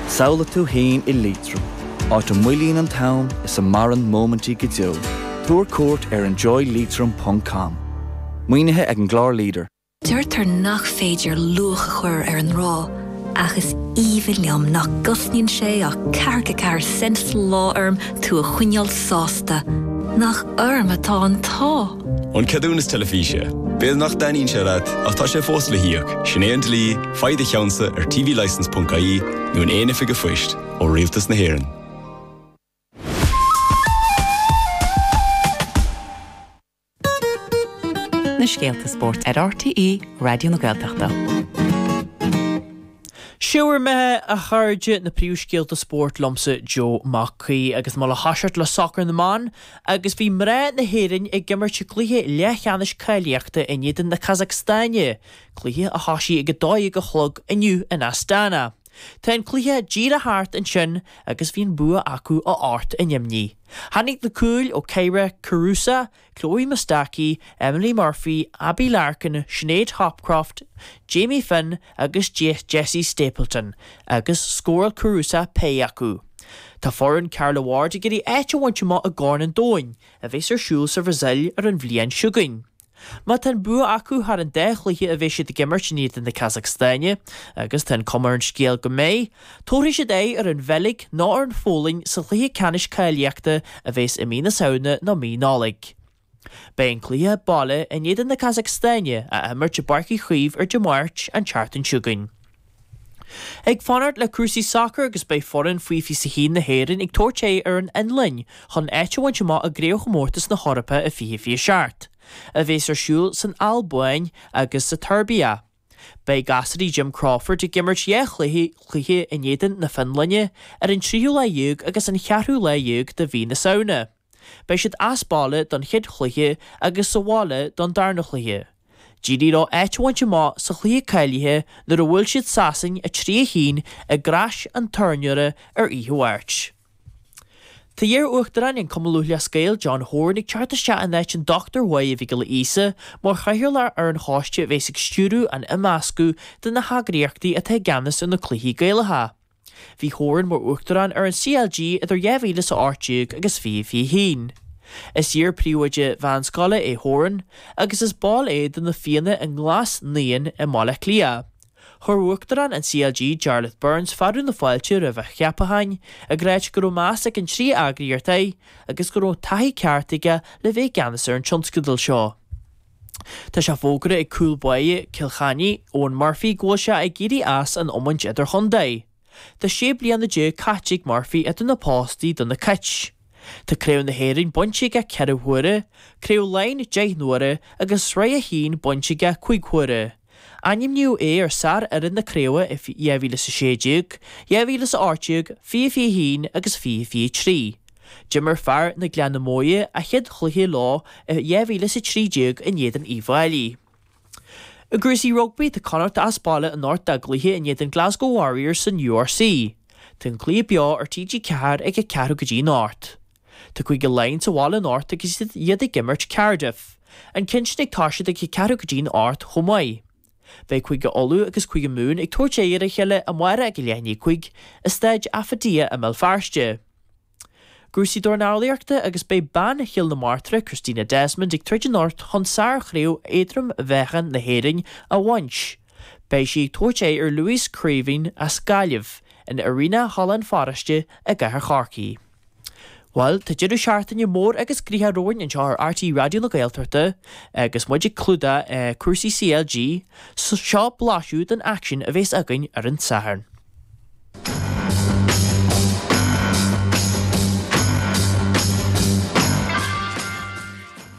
Samhlaigh tú fhéin i Liatroim, áit a moillíonn an t-am is a maireann móimintí go deo. Tabhair cuairt ar enjoyleitrim ponc com. Maoinithe ag an gclár leader. Deirtear nach féidir luach a chur ar an ngrá, ach is aoibhinn liom nach gcosnaíonn sé ach ceathracha a ceathair cent sa lá orm tú a choinneáil sásta. Nach orm atá an t-ádh! An ceadúnas teilifíse. B'fhéidir nach dtaitníonn sé leat, ach tá sé fós le híoc. Sin é an dlí. Faigh do cheannsa ar tvlicense ponc ie nó in aon oifig an phoist ó Rialtas na hÉireann. na scéalta spóirt ar RTÉ Raidió na Gaeltachta. Seo mar atá, a chairde, na príomhscéalta spóirt liomsa Joe Mac Aoidh agus muid ag toiseacht le sacar na mban agus bhí mná na hÉireann ag imirt i gcluiche leathcheannais cáilíochta in éadan na Casacstaine. Cluiche a thosaigh ag a dó dhéag a chlog inniu in Astana. Tá an cluiche díreach thart ansin agus bhí an bua acu a hocht in éadan a neamhní. Tháinig na cúil ó Kyra Carusa, Chloe Mustaki, Emily Murphy, Abbie Larkin, Sinéad Hopcroft, Jamie Finn agus Jessie Stapleton agus scóráil Carusa péire acu. Tá foireann Carla Ward ag iarraidh áit a bhaint amach i gCorn an Domhain, a bheas ar siúl sa Bhrasaíl ar an bhliain seo chugainn. Má tá an bua acu thar an dá chluiche a bheidh siad ag imirt in éadan na Casacstáine, agus tá an cuma ar an scéal go mbeidh, tabharfaidh siad aghaidh ar an Bheilg nó ar an Pholainn sa chluiche ceannais cáilíochta a bheas i mí na Samhna nó mí Nollag. Beidh an cluiche baile in éadan na Casacstáine á imirt i bPáirc Uí Chaoimh ar Dé Máirt an tseachtain seo chugainn. ag fanacht le cúrsaí sacair agus beidh foireann faoi fiche is a haon na hÉireann ag tabhairt aghaidh ar an Fhionlainn chun áit a bhaint amach i gCraobhchomórtas na hEorpa i 2027, a bheas ar siúl san Albain agus sa tSeirbia. Beidh gasúraí Jim Crawford ag imirt dhá chluiche, cluiche in éadan na Fionlainne ar an tríú lá déag agus an ceathrú lá déag de mhí na Samhna. Beidh siad as baile don chéad chluiche agus sa bhaile don darna chluiche. D'éirigh leo áit a bhaint amach sa chluiche cáilithe nuair a bhuail siad Sasain 3 a haon i gCrois an Tornóra ar oíche Mháirt. Tá iar-Uachtarán an Chumann Lúthchleas Gael, John Horan, ag teacht isteach in áit an Dr Máire Mhic Giolla Íosa mar chathaoirleach ar an choiste a bhéas ag stiúradh an imeascadh de na heagraíochtaí atá i gceannas ar na cluichí Gaelacha. Bhí Horan mar Uachtarán ar an CLG idir 2018 agus 2021. Is iar-príomhoide meánscoile é Horan agus is ball é de Na Fianna i nGlas Naíon i mBaile Átha Cliath. Chuir Uachtarán an CLG, Jarlath Burns fearadh na fáilte roimh a cheapachán ag ráit go raibh meas ag na trí eagraíocht air agus go raibh taithí ceart aige le bheith i gceannas ar an tionscadal seo. Tá sé fógartha ag cúl báire Chill Chainnigh, Eoin Murphy, go bhfuil sé ag éirí as an iomáint idir-chontae. Tá sé bliana déag caite ag Murphy idir na postaí do na Cait. Tá Craobh na hÉireann bainte aige ceithre huaire, Craobh Laighean deich n-uaire agus Sraith a hAon bainte aige cúig huaire. Ainmníodh é ar sárfhoireann na Craobhe i 2016, 2018, 2021 agus 2023. D'imir fear na Gleanna Móire a chéad chluiche leo i 2013 in éadan Uíbh Fhailí. I gcúrsaí rugbaí tá Connachta as baile anocht dá gcluiche in éadan Glasgow Warriors san URC. Tá an cluiche beo ar TG4 ag a ceathrú go dtí an hocht. Tá Cúige Laighean sa bhaile anocht agus iad ag imirt Cardiff. An ceann sin ag toiseacht ag a ceathrú go dtí an hocht chomh maith. Beidh Cúige Uladh agus Cúige Mumhan ag tabhairt aghaidh ar a chéile amárach ag a leath i ndiaidh a cúig i Staid Affidea i mBéal Feirste. Cúrsaí dornálaíochta agus beidh bean Chill na Martra Christina Desmond ag troid anocht chun sárchraobh éadrom-mheáchain na hÉireann a bhaint. Beidh sí ag tabhairt aghaidh ar Louise Creaven as Gaillimh in Arena Halla an Pharóiste i gCathair Chorcaí. Bhuel, tá deireadh seachtaine mór agus graitheach romhainn anseo ar RTÉ Raidió na Gaeltachta agus muid ag clúdach cúrsaí CLG, seo blaiseadh den aicsean a bhéas againn ar an Satharn.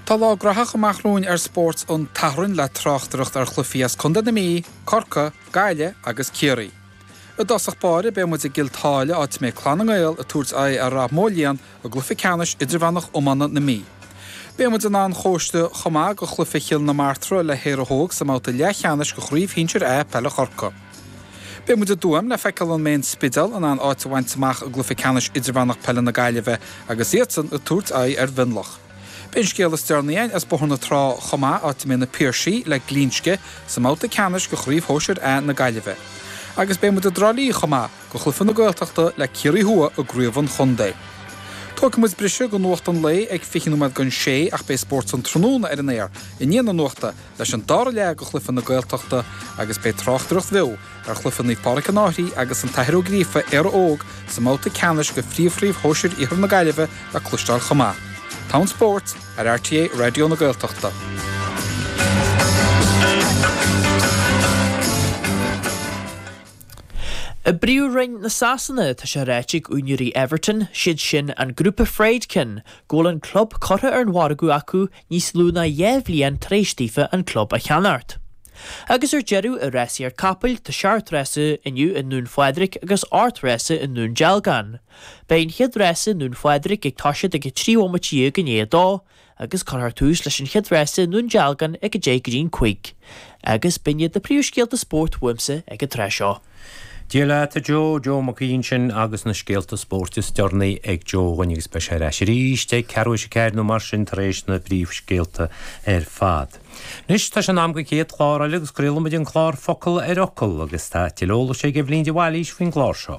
Tá lá graitheach amach romhainn ar Spórt an tSathairn le tráchtaireacht ar chluichí as Contae na Mí, Corcaigh, Gaillimh agus Ciarraí. I dtosach báire beidh muid i gCill Táile áit a mbeidh Clann na nGael ag tabhairt aghaidh ar Ráth Moliain i gcluiche ceannais idirmheánach iomána na Mí. Beidh muid in Áth an Chóiste chomh maith do chluiche Chill na Martra le hÉire Óg sa mbabhta leathcheannais de chraobh shinsir A peile Chorcaí. Beidh muid i dTuaim le feiceáil an mbeidh an Spidéal in ann áit a bhaint amach i gcluiche ceannais idirmheánach peile na Gaillimhe agus iadsan ag tabhairt aghaidh ar Mhionlach. Beidh an scéal is deireanaí againn as Bóthar na Trá chomh maith, áit a mbeidh Na Piarsaigh le Glinsce sa mbabhta ceannais de Chraobh Shóisir A na Gaillimhe. Agus beidh muid i dTrá Lí chomh maith, do chluiche na Gaeltachta le Ciarraí Thuaidh i gCraobh an Chontae. Tógfaidh muid briseadh do Nuacht an Lae ag fiche nóiméad don sé ach beidh Spórt an Tráthnóna ar an aer i ndiaidh na Nuachta leis an dara leath de chluiche na Gaeltachta agus beidh tráchtaireacht bheo Ar chluiche Naomh Pádraig an Fhairche agus an tAthair Ó Gríofa, Éire Óg, sa mbabhta ceannais de Phríomhchraobh Shóisir Iarthar na Gaillimhe le cloisteáil chomh maith. Togha an spóirt ar RTÉ Raidió na Gaeltachta. I bPríomhroinn na Sasana, tá sé ráite ag úinéirí Everton, siad sin an grúpa Friedkin, go bhfuil an club curtha ar an mhargadh acu níos lú ná dhá bhliain tar éis daofa an club a cheannacht. Agus ar deireadh i rásaíocht capall tá seacht rása inniu i nDún Phádraig agus ocht rása i nDún Dealgán. Beidh an chéad rása i nDún Phádraig ag toisead ag a trí bhomaite dhéag i ndiaidh a dó agus curfar tús leis an chéad rása i nDún Dealgán ag a deich i ndiaidh a cúig. Agus b'in iad na príomhscéalta spóirt uaimsa ag an tráth seo. Dia leat, a Joe, Joe Mac Aoidh ansin agus na scéalta spóirt is deireanaí ag Joe againn agus beidh sé ar ais arís ag ceathrú théis a ceathair nó mar sin tar éis na bpríomhscéalta ar fad. Anois tá sé in am don chéad chlár eile agus craolfaimid an clár Focal ar Fhocal agus tá tuilleadh eolais ag Eibhlín de Bhailís faoin gclár seo.